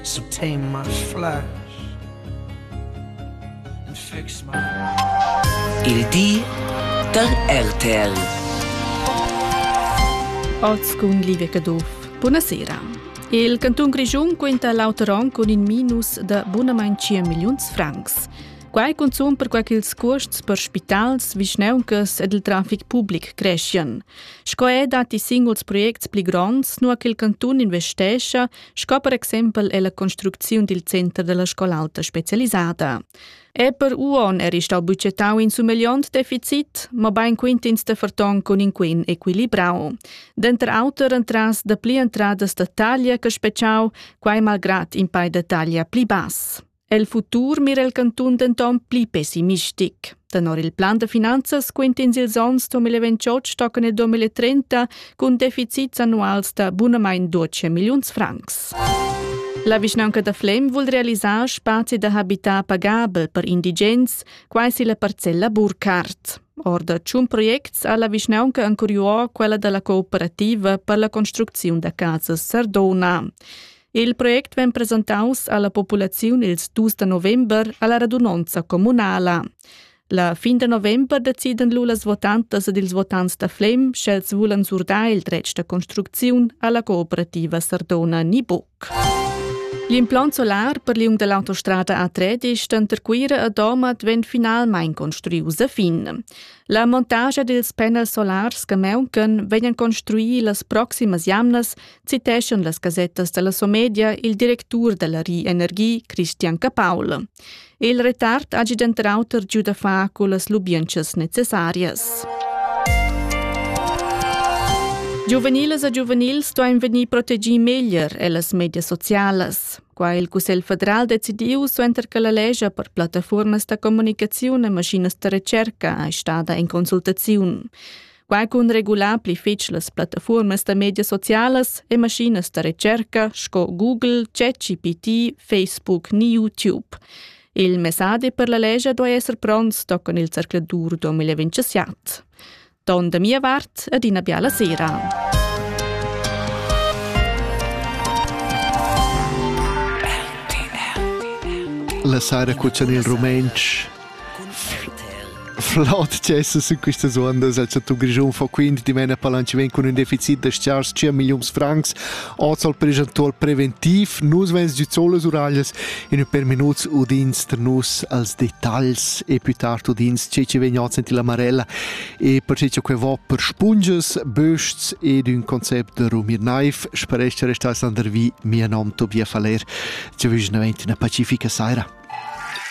Subtain my flash and fix my Il di der RTL Otscun Livecaduff. Buonasera. Il canton Grischun quenta l'auteron con in minus da bunamain 5 miliuns francs. Quai consum per quai ch'ils cuosts per spitals, vischneuncas ed il trafic public crescian. Sco ei dat i singuls projects pli gronds, nua che il cantun investescha, sco per exempel ella construcziun dil center della scol'alta specialisada. Eper Uon era stau bucetau in sumegliont deficit, ma bein quintins de ferton cun in quin equilibrau. Denter auter entras da pli entradas da taglia che speciau, quai malgrat in pai da taglia pli bass. El futur mira il cantun denton pli pessimistic. Tenor il plan da finanzas quintins ils onns 2028 stocken e 2030 cun deficits annuals da bunamain 12 milliuns francs. La vischnaunca da Flem vul realisar spazi da habitar pagabel per indigens, quai si la parcella Burkhardt. Or da tschun projects ha la vischnaunca ancuriuo quella dalla cooperativa per la construcziun da casas Sardona. Il project vegn presentaus alla populaziun ils dus da november alla radunonza communala. La fin da november decidan lu las votantas ed ils votants da Flem, sch'els vulan surdar il dretg da construcziun alla cooperativa Sardona ni buc. L'implant solar per liung dall'autostrada A13 denter Cuira e Domat vegn finalmein construius a fin. La montagia dils panels solars che mauncan vegnan construir las proximas jamnas citeschan las gasettas dalla Somedia il directur dalla Ri Energie Christian Capaul. Il retard hagi denter auter giu da far cullas lubientschas necessarias. Giuveniles e giuvenils stoin vegnir protegì meglier ellas medias socialas. Qua il Cussegl federal decidiu suenter che la legge per plattaformas da comunicazione e maschinas da ricerca è stada in consultazione. Quai cun regular pli fitg las plattafuormas da medias socialas e maschinas da recerca sco Google, ChatGPT, Facebook ni YouTube. Il messadi per la legia duai esser pronts toccan il zercladur 2027. Don da mia vart ed ina biala sera. La Sara Cuzzan il rumentsch Flot tgesa sin questas uondas el chantun Grischun fa quindi dimena palanchiment cun ün deficit da stgars 5 milliuns francs. Oz al pregentual preventiv nus vens giu zolas uraglias in ün per minuts udins tra nus als detagls e più tard udins che che vegn oz in la Marella e per che que va per spunges, bösts ed ün concept da Rumir Naif sparesce restar sandervi mia nom Tobias Faller. Ci vügn avent una pacifica saira.